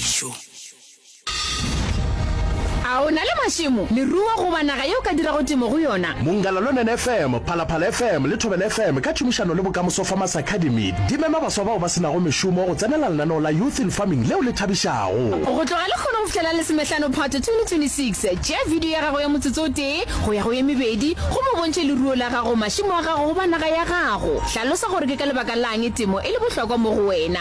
dijo. A o na le mašemo, leruo goba naga ye o ka dirago temo go yona? Mongalalonen FM, Phalaphala FM le Thobela FM ka tšhomišano le Bokamoso Farmers Academy di mema baswa bao ba se nago mešomo go tsenela lenaneo la Youth in Farming leo le thabišago. Go tloga lekgolo go fihlela lesomehlano Phatwe 2026, tšea bidio ya gago ya motsotso o tee go ya go ye mebedi gomme o bontšhe leruo la gago, mašemo a gago goba naga ya gago. Hlalosa gore ke ka lebaka la'ng temo e le bohlokwa mo go wena.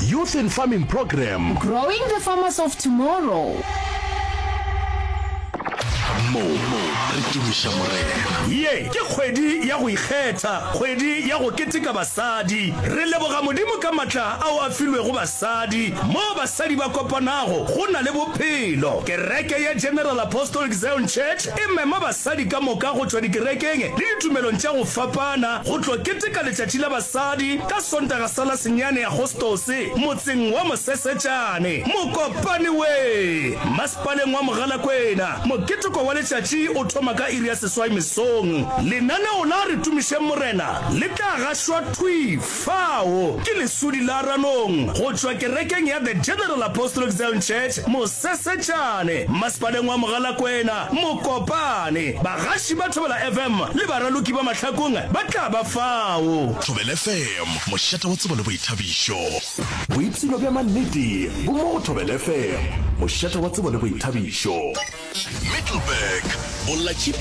Youth in Farming Program. Growing the Farmers of Tomorrow. mo re tumiša morena ye ke kgwedi ya go ikgetha kgwedi ya go keteka basadi re leboga modimo ka matla ao a filwego basadi mo basadi ba kopanago go na le bophelo kereke ya general apostolic zion church E mema basadi ka moka go tšwa dikerekeng le ditumelong tša go fapana go tlo keteka Letšatši la Basadi ka Sontaga sa la senyane Agostose motseng wa Mosesetšane, Mokopane we, Masepaleng wa Mogalakwena. Moketeko wa letšatši o thoma ka iri ya seswai mesong. Lenaneo la Re Tumišeng Morena le tla gašwa thwi. Fao ke leswuli la Ranong go tšwa kerekeng ya The General Apostolic Zion Church, Mosesetšane, Mmasepaleng wa Mogalakwena, Mokopane. Bagaši ba Thobela FM le baraloki ba mahlakong ba tla ba fao. Thobela FM, mošate wa tsebo le boithabišo. Boipshino bja mannete bo mo go Thobela FM, mošate wa tsebo le boithabišo. Middleburg, Bolla Tšhipi.